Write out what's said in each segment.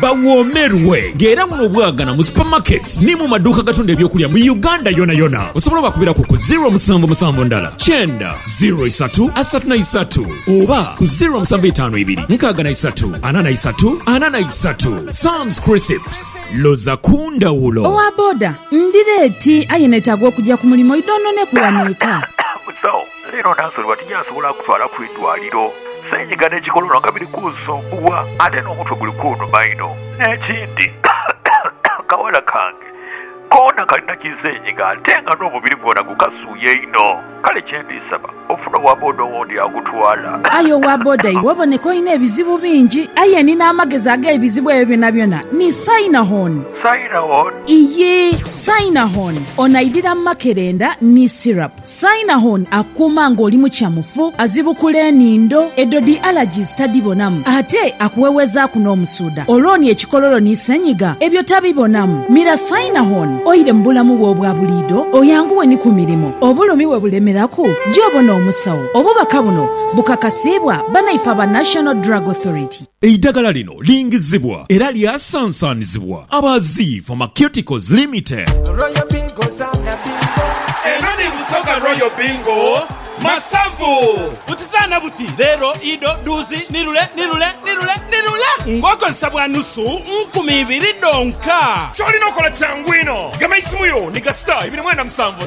Bawoomerwe nga era buno obwagana mu supermarkets ni mu maduuka agatunda eby'okulya mu Uganda yonayona. Osobola obakubiraku ku ziro musanvu musanvu ndala kyenda ziro isatu asatu na isatu oba ku ziro musanvu itaanu ibiri nkaaga na isatu ana na isatu ana na isatu. Sam's Crisps, loza ku ndhawulo. Owa boda, Ndira eti aye netaaga okugya ku mulimo idhonhoneku wano eka. Leero Nansoli bwati gy'asobola okutwala ku idwaliro. Senyiga n'ekikolono nga biri kunsumbuwa ate n'omutwe guli kunuma inho. N'ekindi, akawala kange koona kalina ki senyiga ate nga n'omubiri gwona gukasuuya inho. Kale kye ndi saba, ofune owa boda owundi agutwala. Aye owa boda iwe oboneka olina ebizibu bingi. Aye ni n'amagezi ag'ebizibu ebyo byonabyona ni Sainahon. Sainahon? Iyii, Sainahon. Ono aidhira makerenda ni syrup. Saina hon akuuma nga oli mukyamufu, azibukula enindo, edho dhi allergies tadhibonamu ate akuwewezaaku n'omusuudha olwoni ekikololo ni senyiga ebyo tabibonamu. Mira Saina hon oile mu bulamu bwo obwa buliidho oyanguwe ni ku mirimo obulumi we bulemeraku gy'obona omusawo. Obubaka buno bukakasiibwa banaife aba National Drug Authority. Eidagala lino lingizibwa era lyasansanizibwa aba Zii Pharmaceuticals Limited. Royal Bingo zaana bingo. Eno ni Busoga Royal Bingo Masavu. Buti zaana buti, leero, ido, dhuuzi, ni lule, ni lule, ni lule, ni lule ng'okozesa bwa nusu nkumi ibiri dhonka. Ky'olina okola kyangu inho, gema eisimu yo ni gasita ibiri mwenda musanvu.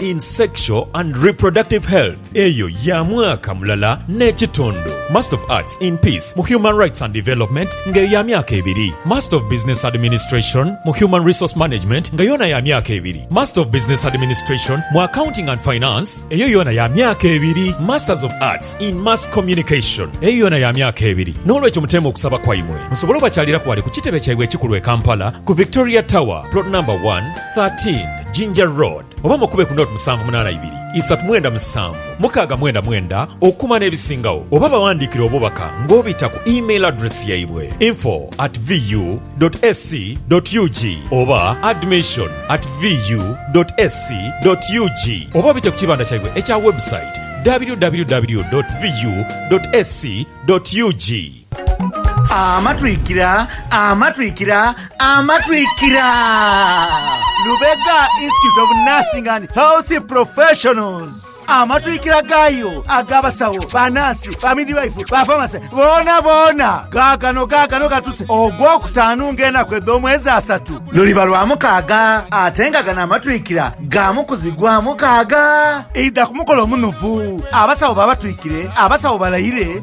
in Sexual and Reproductive Health eyo ya mwaka mulala n'ekitundu, Master of Arts in Peace mu Human Rights and Development nga eyo ya myaka ebiri, Master of Business Administration mu Human Resource Management nga yoona ya myaka ebiri, Master of Business Administration mu Accounting and Finance eyo yoona ya myaka ebiri, Masters of Arts in Mass Communication eyo yoona ya myaka ebiri. N'olwekyo muteeme okusaba kwaimwe musobole obakyaliraku ghale ku kitebe kyaibwe ekikulu e Kampala ku Victoria Tower, Plot Number one, 13, Jinja Road, oba mukube ku Nought musanvu munaana ibiri, isatu mwenda musanvu, mukaaga mwenda mwenda okukuma n'ebisingagho oba bawandiikire obubaka ng'obita ku email address yaibwe, info at VU dot SC dot UG oba admission at VU dot SC dot UG oba obite ku kibanda kyaibwe ekya website www dot VU dot SC dot UG. Amatwikira, amatwikira, amatwikira! Lubega Institute of Nursing and Health Professionals. Amatwikira gaayo ag'abasawo, banaasi, bamidwife, bafamase boona boona gaagano gaagano gatuse ogw'okutaanu ng'enaku edh'omwezi asatu luliba lwa mukaaga ate nga gano amatwikira ga mukuzi gwa mukaaga. Idha ku mukolo omunuvu, abasawo babatwikire, abasawo balayire,